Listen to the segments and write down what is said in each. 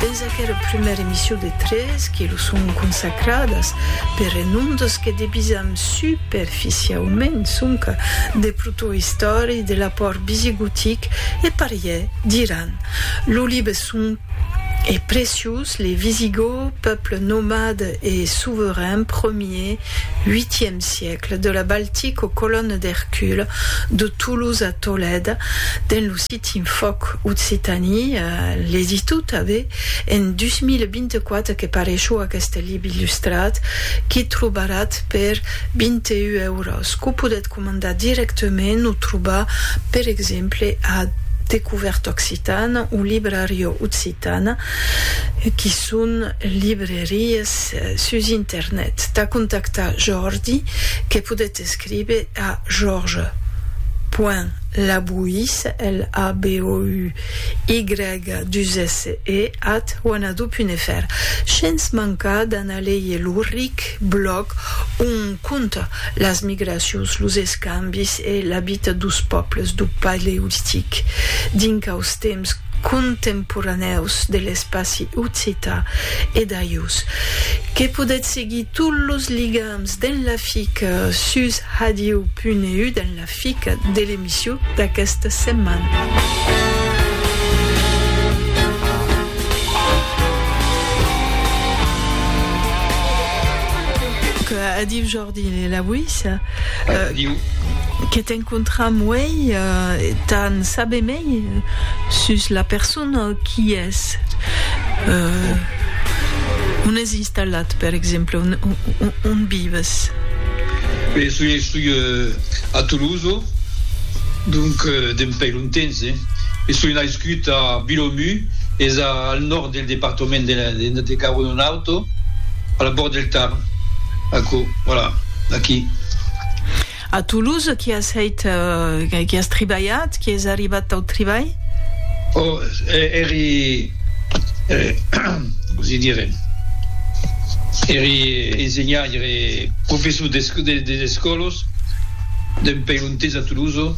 Dens aquera prumèra emission de tres que los son consacradas per renondos que debisam superficiaument sonca de protoistòria de l'apòrt visigotic e pariè d'Iran, lo libe son e preciós Les Visigoths, peuple nomade et souverain, premier, viiièm siècle, de la Baltique aux colonnes d'Hercule, de Toulouse à Tolède, dens lo Team Fòc Occitanie a legiscut tanben en 2024 que pareishó aqueste lib illustrat qu'i trobaratz per 21 euros, qu'o podètz comandar dirèctament o trobar per exemple a Découverte Occitane o Librario Occitane qui son librerias sus internet. Tà contactar Jordi que podètz S'escrive a Jorge. Point Labouis, L-A-B-O-U-Y, dus esse, e, at wanadoo.fr. Shens mancar d'anar leir lo ric blòg ont conta las migracions, los escambis e la vita dos pòbles do Paleolitic dinc aus temps contemporanèus de l'espaci occitan e d'ajus que podètz seguir tots los ligams. Den la fic sus hadiu punt eu den la fic de l'emissu d'aquesta setmana. Que a diu Jordi Lewis que t'encontram uei t'an saber mei sus la persona qui es. Talhat, per exemple, on vives? Be, soi estou a Toloso, donc d'en pei lontens, eh? E soi naiscut a Bilomu, es al nòrd del departament de Garona-Alto, a la bòrd del Tarn, aquò, voilà, aquí. A Toulouse, qui as hèit, qui as tribalhat, qui es arribat tau tribalh? O, eri, cosi dire, eri ensenhaire, professor des escòlos d'un pèl un tens a Toulouse,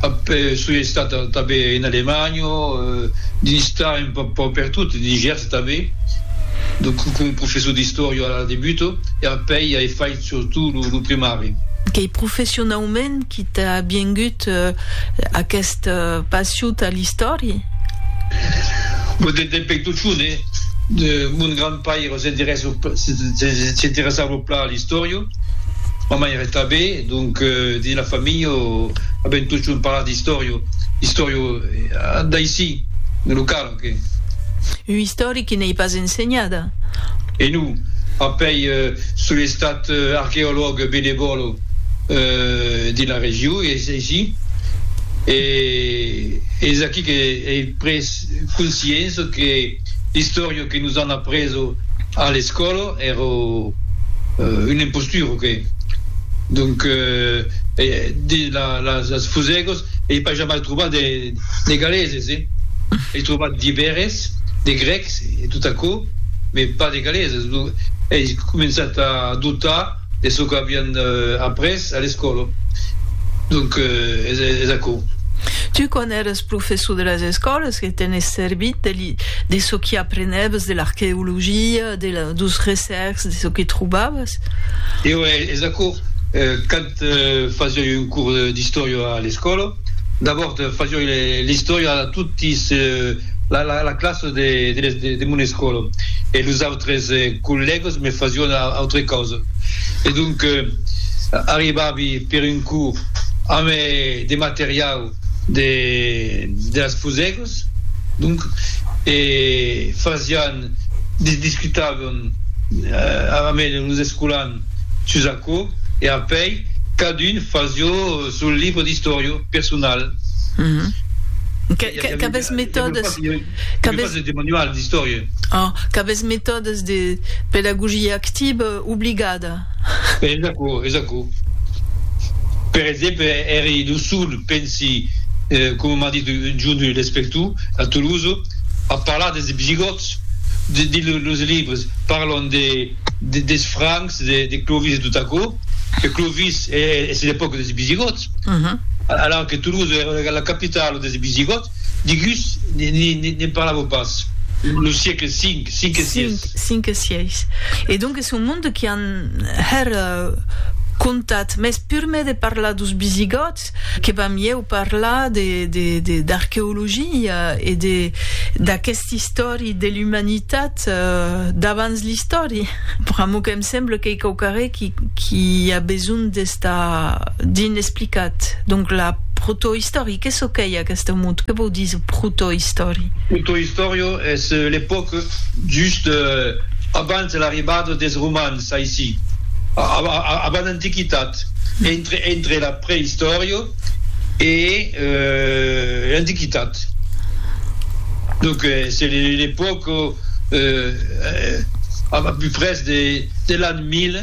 après soi estat tanben en Alemanha, dins estat un pauc pertot, dins Gèrs tanben, donc coma professor d'istòria a la debut, e après ai fait, surtout lo primari. Qu'ei professionaument qui t'a viengut aquest passion tà l'istòria? Vo de de peituchon, e. Mon grand paire s'interèsso s'interessavo plan a l'istòria, ma maire tabé, donc dins la familha avèm totjorn parlat d'istòria, istòria d'aissi, de lo cal. Un istoric qui n'ei pas ensenhada. E non, a pei, son estat archeològ benevòl dins la region, es aicí, e es aquí que ei pres consciença que l'istòria que nos an apresa a l'escòla èra una impostura, o qué? Donc, dins las fusègas. e pas jamai trobar de de galeses eh ei trobat d'iberes de grecs e tot aquò me pas de galeses lo ei començat a dotar de çò qu'avian après a l'escòla donc es es aquò. Tu quan eres professor de las escòlas que t'enes servit de li de çò qui aprenèves de l'arqueologia de la dos recercs de çò que trobavas? Eo es aquò quand Eth fasioi un curs d'istòria a l'escòla. D'abòrd fasioi l'istòria a toti la classa de mon escòla e los autres collègas me fasion autre causa. E donc arribavi per un curs amb de materiau de las fusègas, donc, e fasián discutàvem ara mèger los escolans sus aquò e apèi cadun fasió son libre d'istòria personal. Qu'avètz metòdes qu'avètz metòdes de pedagogia activa obligada. Es aquò, es aquò. Per exemple, èri lo sol Pensi, coma m'a dit un jorn un lespector a Toulouse, a parlar des Visigòts, dins los libres parlan des Francs, de Clovis e tot aquò, que Clovis es l'epòca des Visigòts, alara que Toulouse èra la capitala des Visigòts, digús ne'n parlavò pas, lo siecle 5, 5 e 6. 5 e 6. Son monde qui an hèr contat, mès pur me de parlar dos Bisigòts, que va mieu parlar d'arqueologia e d'aquesta istòri de l'umanitat d'abans l'istòri. Pr'amor qu'èm semble qu'ei quauquarré qui a besonh d'estar d'in explicat. Donc la protoistòri, que çò qu'ei aquesta mot? Que vòu díser protoistòri? Protoistòria es l'epòca. just abans l'arribada des Romans aicí, avant l'Antiquitat, entre la Preïstòria e l'Antiquitat. Donc c'est l'epoque à peu près de l'an. Mile,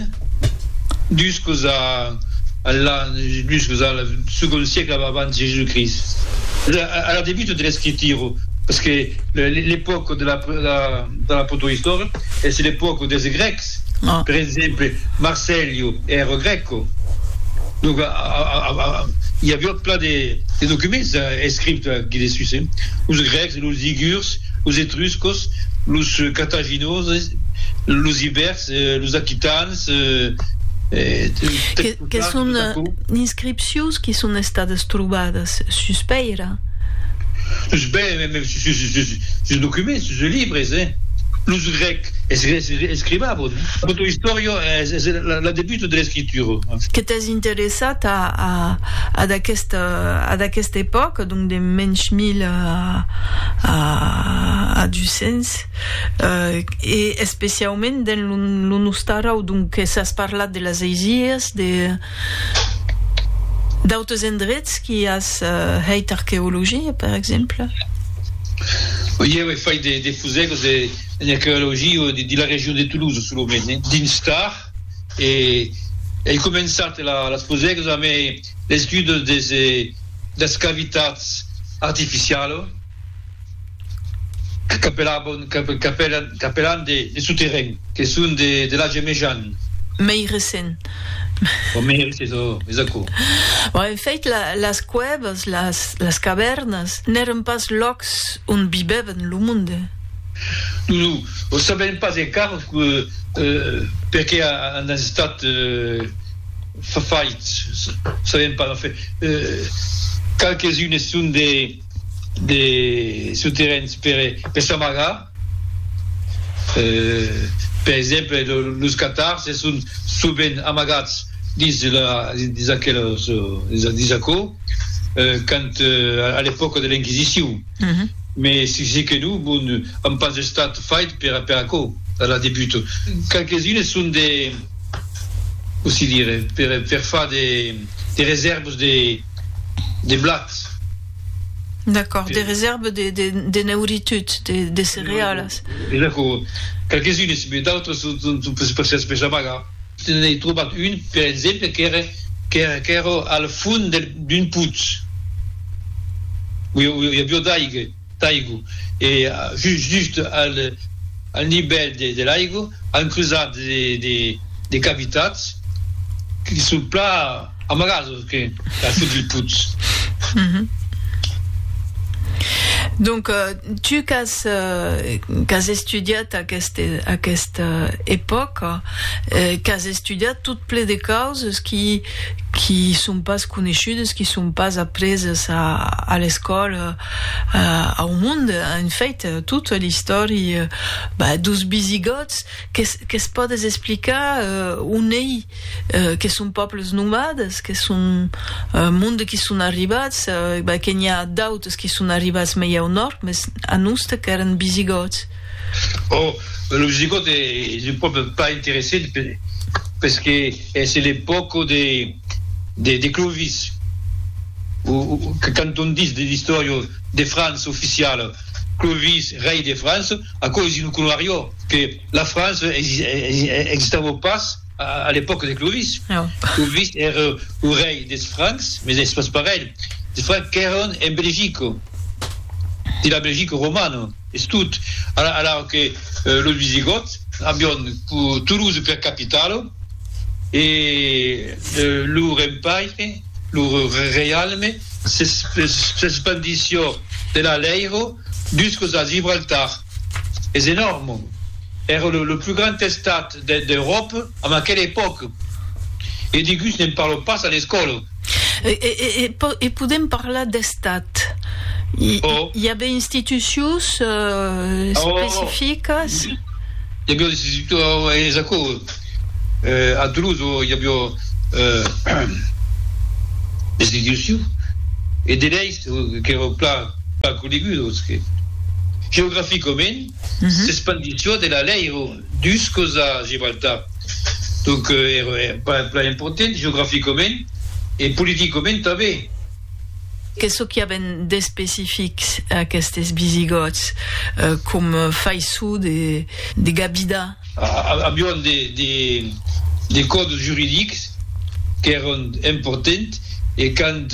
dus cos a l'an, dus cos a l'an, segon siecle ab abans Jésus-Christ, a la debut de l'escritura, parce que l'epòca de la de la protoistòria es l'epòca des Grècs, per exemple, Marcellio èra grèco, donc i a viot plan de documents escrits aquí dessús, los Grècs, los Ligurs, los Etruscos, los Cartaginoses, los Ibèrs. Los aquitans... Que son d'inscripcions que son estadas trobadas sus pèira? Sus pèira, mès sus documents, sus libres, eh? Los grècs escrivavan. Tota istòria es la debut de l'escritura. Que t'es interessat a d'aquesta epòca, donc de mensh 1000 a 200? E especiaument dens lo Nostarau, donques as parlat de las Aisias, de d'autres endrets qui as hèit arqueologia, per exemple? Oi, aué fait de fusègos en arqueologia dins la region de Toulouse, solament dins Tard, e ei començat las fusègos amé l'estudos des cavitats artificialos. Capelabon, capelan, capelan de souterrain, que son de l'age mejan. Mei recent. Ò mei recent, ò, es aquò. Bon, en fèit, las cuèvas, las cavèrnas, n'èran pas lòcs ont vivèvan lo monde. Non, non, o sabèm pas encara, perqué an estat faits, sabèm pas, enfin, qualques-unes son de. de soterrains per s'amagar, per exemple los catars se son sovent amagats dins la dins aquelos dins aquò quand a l'epòca de l'inquisicion mes se se que non bon an pas estat fait per per aquò a la debut qualques unes son de cossí dire per far de de resèrvas de de blat. D'acòrd, de resèrva de neuritud, de cerealas. Exacò, qualques unes, mès d'autres son per se espesamagar. Se n'ei trobat un, per exemple, qu'èra al fond d'un putz, ui avió d'aiga. d'aigu e just just al nivèl de l'aigu an cruzat de cavitats que son plan amagadors que al fons del putz. Donc tu qu'as estudiat aquesta epòca, qu'as estudiat tot ple de causes qui son pas coneishudes, qui son pas apreses a l'escòla, au monde en fait toute l'istòria dos bisigòts qu'es pòdes explicar on ei que son pòbles nomades que son monde qui son arribats que n'i a d'autres qui son arribats mei au nòrd mes a noste qu'èran bisigòts Oh, lo Visigot es un pòble pas interessent pes que es l'epòca de de Clovis o quand on dis de l'istòria de França oficiala Clovis rei de França, aquò es un colariò que la França existava pas. A l'epòca de Clovis, Clovis ère o rei des Francs, mes es pas parelh, des Francs qu'èron en Belgico, dins la Belgico romana, es tot, alara que los Visigòts avion Toulouse per capitala e lor empaire, lor reialme s'espandission de l'Aleiro jusques a Gibraltar. Es enòrme. Èra lo plus grand estat d'Euròpa en aquela epòca. E deguts ne'n parlon pas a l'escòla. E podèm parlar d'estat? I a be institucions especificas? I aviá de situar es aquò. A Toulouse i aviá de institucions e de leis. qu'èro plan pas conegut o que geograficament s'espandisson de la lei ero dus cos a Gibraltar donc ero pas plan important geograficament e politicament tanben. Qu'es çò qu'i aven d'especific aquestes visigòts com faisson de gabidar Avián de còdes juridics qu'èran importants e qu'an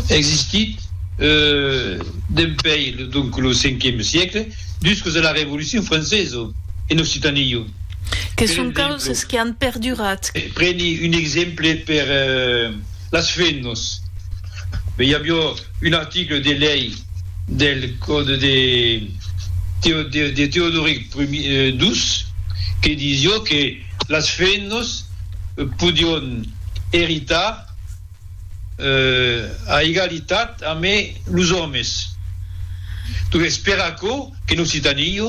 existit dempuèi donc lo cinquième siècle jusques a la Révolution française en Occitanie. Que son causes que an perdurat. Preni un exemple per las fennas. I aviá un article de lei. del còde de Teodoric ii, que disió que las femnas podión eritar a egalitat amé los òmes. Donques per aquò qu'en Occitania,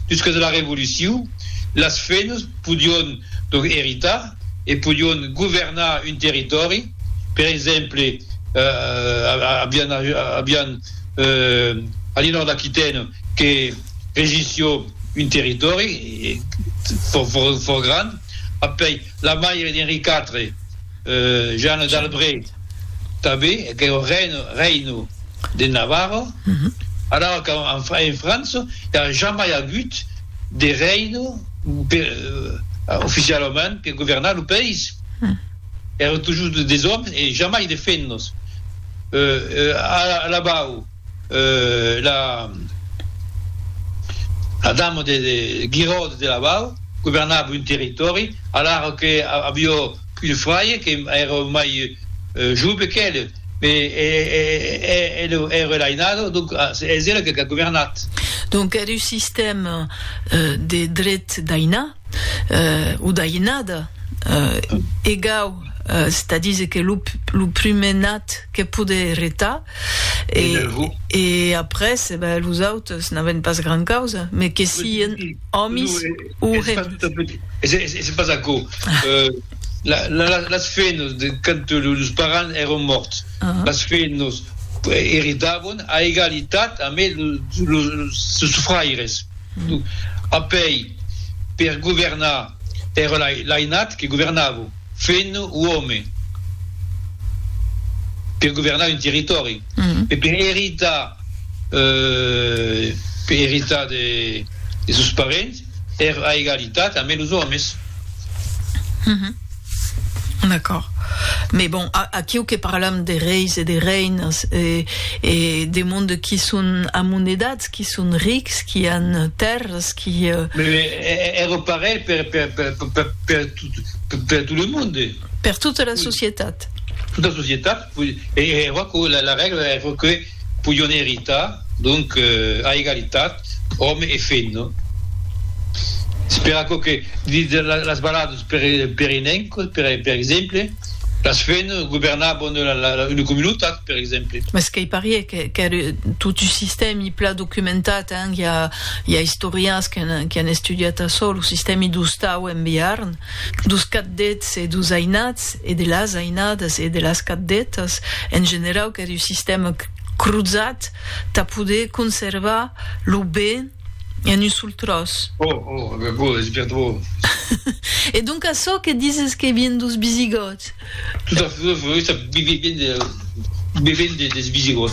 jusques a la Revolucion, las femnas podión donc eritar e podión governar un territòri. Per exemple, avián avián a l'inòrd d'Aquitaine que regissió un territòri fò fò fòrt grand, apèi la maire d'Enri quatre, Jeanne d'Albret, tanben aqueu reine reino de Navarro, alors qu'en en França i a jamai agut de reino per oficialament per governar lo país. Èran tojos de desòmes e jamai de fennos. Alabau, la dama de Guiraud de Labau governava un territòri, alara que avió un fraire que èra mai jove qu'el, mès el èra l'ainada, donc es ela que qu'a governat. Donc, èra un sistèma de dret d'ainar. o d'Ainada, egau, c'est à dire que lo lo prumèr nat que pode eretar e e après e ben los autes n'aven pas gran causa me que sien òmis o c'est pas aquò la la las fenos de quand los parents èron mòrts las fenos eritavon a egalitat amé los los fraires. Apèi, per governar, èra l'ainat que governava, fent uòme, per governar un territòri, e per eritar, per eritar de sos parents, èra a egalitat amé los òmes. D'accord. Mès bon, aquiu que parlam de reis e de reinas e e de monde qui son amonedats, qui son rics, qui an tèrras, qui... Mès ère parelh per per per per per tot le monde. Per tota la societat. Tota la societat, oui. E e aquò la la règla ère que podion eritar donc a egalitat òme e femna. Es per aquò que dins las baladas perinenques, per exemple, las femnas governavan una comunitat, per exemple. Mas qu'ei parier qu'ère tot un sistèmi plan documentat, hein, i a istorians qui an estudiat açò, lo sistèmi d'ostau en Bearn. dos caddets e dos ainats e de las ainadas e de las caddetas en generau qu'es un sistèma crozat tà poder conservar lo ben en un sol tròç. Oh! Oh! Aquò es bien dròlle! E donc açò que dises que vien dos visigòts? Tot à fait, ça vien des visigòts.